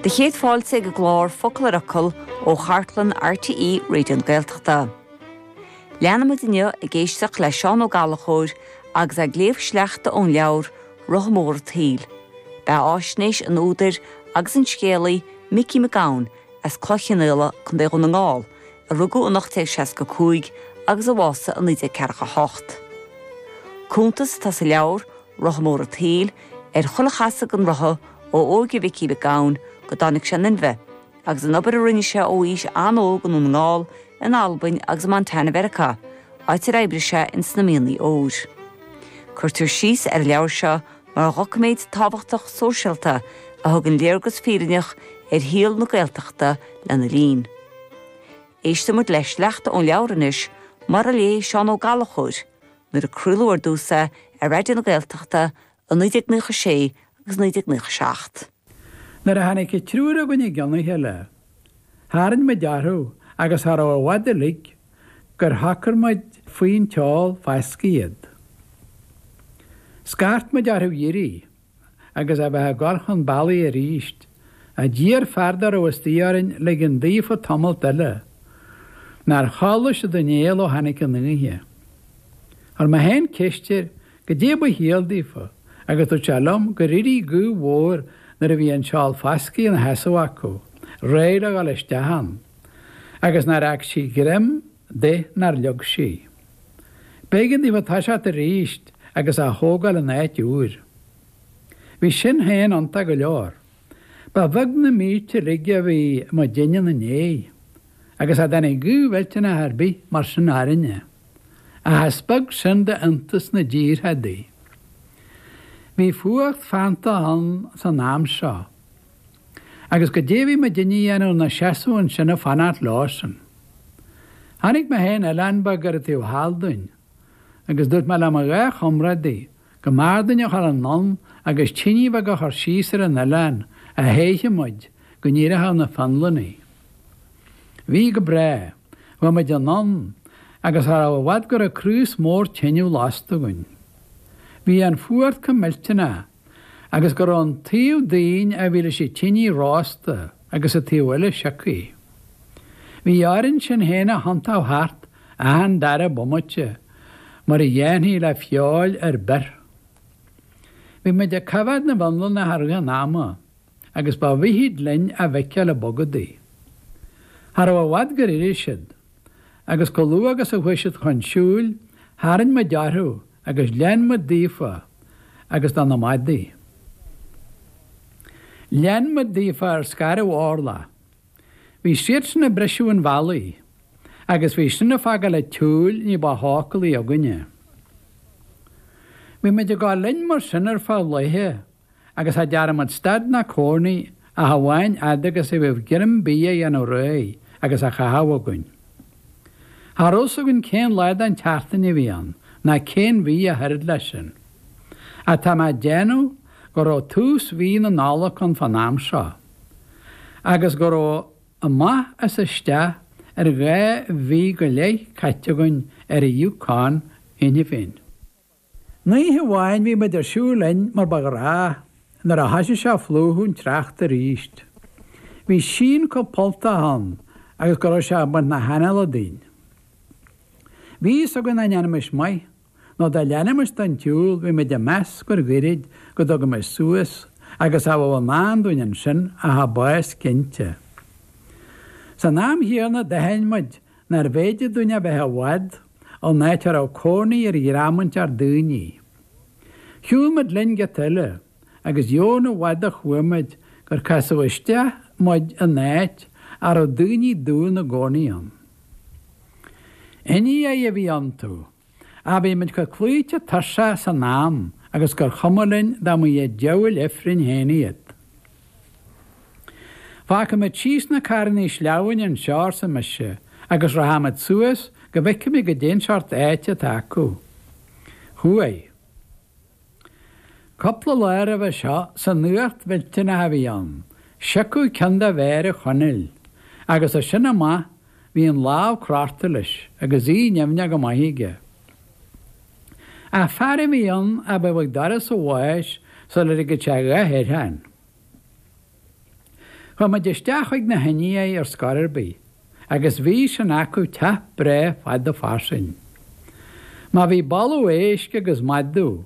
Do chéad fáilte ag an gclár Focal ar Fhocal ó chartlann RTÉ Raidió na Gaeltachta. Leanfaimid inniu ag éisteacht le Seán Ó Gallachóir agus é ag léamh sleachta ón leabhar Rotha Mór an tSaoil. Beathaisnéis an údair agus an scéalaí Micí Mac Gabhann as Cloich Chionnaola, Co. Dhún na nGall, a rugadh in 1865 agus a bhásaigh in 1948. Cuntas atá sa leabhar Rotha mór a' tsaoil, ar chul a chasfadh an rotha ó óige Mhicí Mhic Gabhann go dtáinig sé in inmhe, agus an obair a rinne sé ó aois an-óg i nDún na nGall, in Albain agus i Montana Mheiriceá, áit ar oibrigh sé ins na mianaigh óir. Cuirtear síos ar an leabhar seo mar dhoiciméad tábhachtach sóisialta a thugann léargas fírinneach ar shaol na Gaeltachta lena linn. Éisteann muid le sleachta ón leabhar anois, mar a léigh Seán Ó Gallachóir, Nuair a craoladh ar dtús é ar Raidió na Gaeltachta i 1996 agus 1997. Nuair a tháinig an triúr againn i gceann a chéile, tharraing muid orthu agus cha raibh i bhfad uilig gur shocair muid faoin tseál fascaidh iad. Scairt muid orthu éirí. agus a bheith ag cur chun bealaigh arís, ach d'iarr fear dá raibh istigh orainn ligean daofa tamalt eile. Nár chodlaigh siad aon néal ó tháinig an oíche. Chuir mé féin ceist air goidé ba chiall daofa agus dúirt sé liom gur éirigh gaoth mhór nuair a bhí an seál fascaidh ina sheasamh acu, réidh le dhul isteach ann, agus nár fhág sí greim de nár leag sí. B'éigean daofa toiseacht arís agus a thógáil in áit úr. Bhí sin féin iontach go leor. Ba bheag na mílte uilig a bhí muidinne ina ndéidh, agus cha dtáinig gaoth mhillteanach ar bith mar sin orainne. Ach is beag sin d'iontas na dtíortha údaí. Bhí fuacht feanntach ann san am seo. Agus goidé a bhí muidinne a dhéanamh inár seasamh ansin ag fanacht leosan. Chonaic mé féin oileán beag ar an taobh thall dúinn, agus dúirt mé le mo dhá chomrádaí go mb'fhearr dúinn a chur anonn agus tinidh bheag a chur síos ar an oileán a théifeadh muid go n-éireodh na Fionlannaigh. Bhí go breá. Chuaigh muid anonn, agus cha raibh i bhfad go raibh craos mór tineadh lasta againn. Bhí an fuacht chomh millteanach. agus go raibh an taobh dínn a bhí leis an tinidh rósta agus an taobh eile siocaithe. Bhí orainn sinn féin a thiontó thart achan dara bomaite mar a dhéanfaí le feoil ar bith. Bhí muid ag coimheád na bhFionlannach i rith an ama agus ba mhithid linn a bhfeiceáil ag bogadaigh. Cha raibh i bhfad gur éirigh siad. agus chomh luath agus a chuaigh siad chun siúil, tharraing muid orthu agus lean muid daofa agus do na madaí. Lean muid daofa ar scairbh Orla. Bhí siadsan ag briseadh an bhealaigh agus bhí sin ag fágáil an tsiúil ní ba shócúlaí againne. Bhí muid ag dul linn mar sin ar feadh laethe. agus cha dtearn muid stad ná cónaí ach amháin fhad agus a bheadh greim bídh á dhéanamh réidh agus á chaitheamh againn. Cha raibh fhios againn cén lá den tseachtain a bhí ann ná cén mhí ach oiread leis sin. Ach tá mé ag déanamh go raibh tús mhí na Nollag ann fán am seo agus go raibh amach is isteach ar dhá mhí go leith caite againn ar an Yukon cheana féin. Oíche amháin bhí muid ag siúl linn mar ba ghnách, nuair a thoisigh sé a phlúchadh an tsneachta arís, bhí síon chomh polltach ann agus go raibh sé ag baint na hanála dínn. Bhí fhios againn nach ndéanfaimis maith, nó dá leanfaimis den tsiúl, bhí muid ag meas gur ghoirid go dtugaimis suas agus cha bheadh i ndán dúinn ansin ach an bás cinnte. San am chéanna d'aithin muid nárbh fhéidir dúinn a bheith i bhfad, ón áit a raibh cónaí ar dhream inteacht daoine. Shiúil muid linn giota eile agus dheamhan i bhfad a chuaigh muid gur casadh isteach muid in áit a raibh daoine dubha ina gcónaí ann. Indiaigh a bhí iontu, ach bhí muid chomh cloíte tuirseach san am agus gur chuma linn dá mba iad diabhail ifrinn féin iad. Fágfaimid síos na carrannaí sleamhnáin anseo, arsa mise, agus rachaimid suas go bhfeicfimid goidé an seort áite atá acu. Chuaigh. Cupla lá roimhe seo san fhuacht mhillteanach a bhí ann, siocadh ceann de mhéara Chonaill, agus as sin amach bhí an lámh crochta leis agus í nimhneach go maith aige. Ach fear a bhí ann a bheadh ag doras a' bháis sula ligfeadh sé a dhath air féin. Chuaigh muid isteach chuig na hIndiaigh ar scor ar bith, agus bhí sin acu teach breá fada fairsing. Má bhí boladh éisc agus madadh,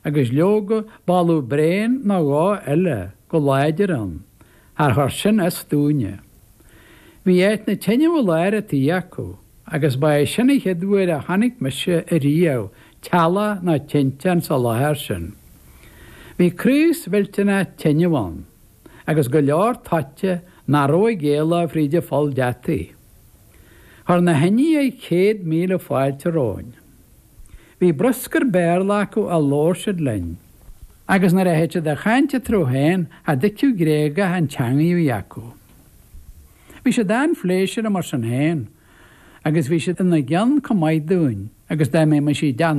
agus leoga boladh bréan nó dhó eile go láidir ann, char chuir sin as dúinne. Bhí áit na teineadh i lár an tí acu, agus ba é sin an chéad uair a chonaic mise ariamh teallach ná tinteán sa láthair sin. Bhí craos mhillteanach teineadh ann, agus go leor toite nach raibh ag éaló fríd an pholl deataigh. Chuir na hIndiaigh céad míle fáilte romhainn. Bhí bruscar Béarla acu a labhair siad linn. Agus nuair a thit siad a chaint eatarthu féin cha dtuigfeadh Gréagach an teangaidh a bhí acu. Bhí siad an-phléisiúrtha mar sin féin agus bhí siad ina gcion chomh maith dúinn agus dá mbeimis i dteanna